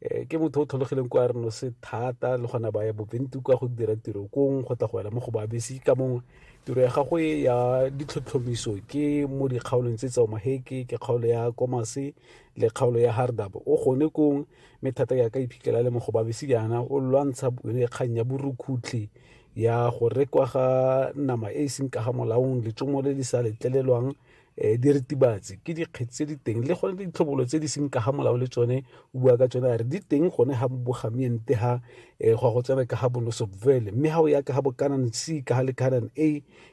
eh, ke motho o tlhologileng kwa reno se thata le gona ba ya boventu ka go dira tiro kong go tla go ela mo go babesi ka mongwe tiro ya gagwe ya ditlhotlhomiso ke mo dikgaolong tse tsao maheke ke kgaolo ya komase le kgaolo ya hardab o gone kong mme thata ya ka iphitlhela le mo go babesi jaana o lwantsha kgang ya borukhutlhi ya go rekwa ga nama e e seng ka ga molaong letsomo le le sa letlelelwang um diritibatsi ke dikgetsi tse di teng le gone ditlhobolo tse di seng ka ga molao le tsone o bua ka tsone a re di teng gone ga bogamiente ga um eh, go go tsena ka ga bonosopvele mme ga o ya ka ga bokanan c ka ga le canan a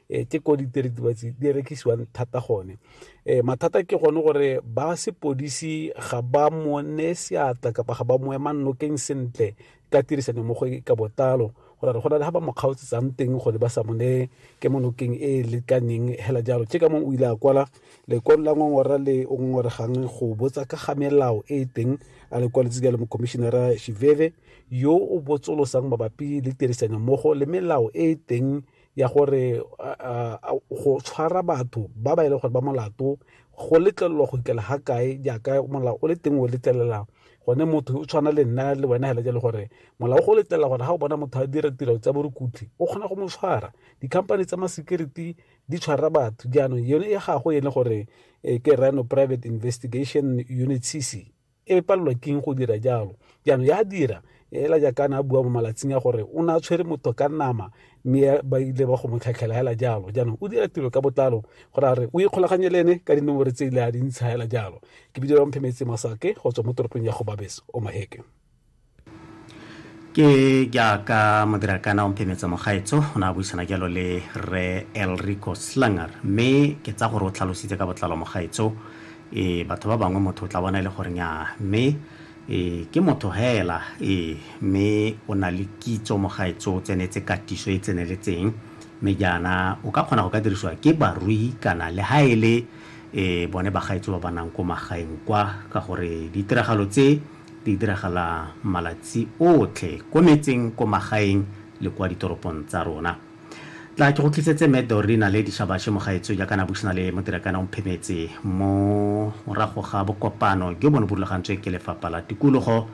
um ke ko ditiritibatsi di rekisiwang thata gone um mathata ke gone gore ba sepodisi ga ba mone seatla kapa ga ba moema nokeng sentle ka tirisano mo go ka botlalo go ra go na le ga ba mo kgaotsetsang teng gore ba sa mo ne ke mo nokeng e e lekaneng hela jalo ke ka mong o ile a kwala lekwalo la ngongora le o ngongoregang go botsa ka ga melao e e teng a le kwaletse jalo mokomišenara shiveve yo o botsolosang mabapi le tirisano mmogo le melao e e teng ya gore go tshwara batho ba ba e leng gore ba molato go letlelelwa go ikela ga kae jaaka molao o le teng o letlelela gone motho o tshwana le nna le wena fela ke le gore molao go letlelela gore ga o bona motho a dira tiro tsa borukutlhi o kgona go mo tshwara di-company tsa ma-security di tshwara batho jaanong yone ya gago e le gore eh, ke rano private investigation unit cc e palelwa keng go dira jalo jaanong ya dira ela jaakana a bua mo malatsing a gore o ne a tshwere motho ka nama mme ba ile ba go mo tlhatlhela hela jalo jaanong o dira tiro ka botlalo gore a re o ikgolaganye le ene ka dinomore tse ile a di ntsha hela jalo ke bidio mphe metse masake go tswa mo toropong ya go babeso o maheke ke jaaka modirakana o mphemetse mogaetso o ne a buisana jalo le re elrico slanger mme ke tsa gore o tlhalositse ka botlalo mogaetso e batho ba bangwe motho o tla bona e le gore nyaa mme e ke motho hela e mme o na le kitso mogaetso o tsenetse katiso e tseneletseng mme jaana o ka kgona go ka dirisiwa ke barui kana le ha e le e bone bagaetso ba ba nang ko magaeng kwa ka gore ditiragalo tse Di diragala malatsi otlhe ko metseng, ko magaeng le kwa ditoropong tsa rona. Tla ke go tlisetse Mme Doreen Naledi Shabashe Mogaetsho jaaka na buisana le Modirakana Omphemetse mo morago ga bokopano jo bo ne bo rulagantswe ke Lefapha la Tikologo.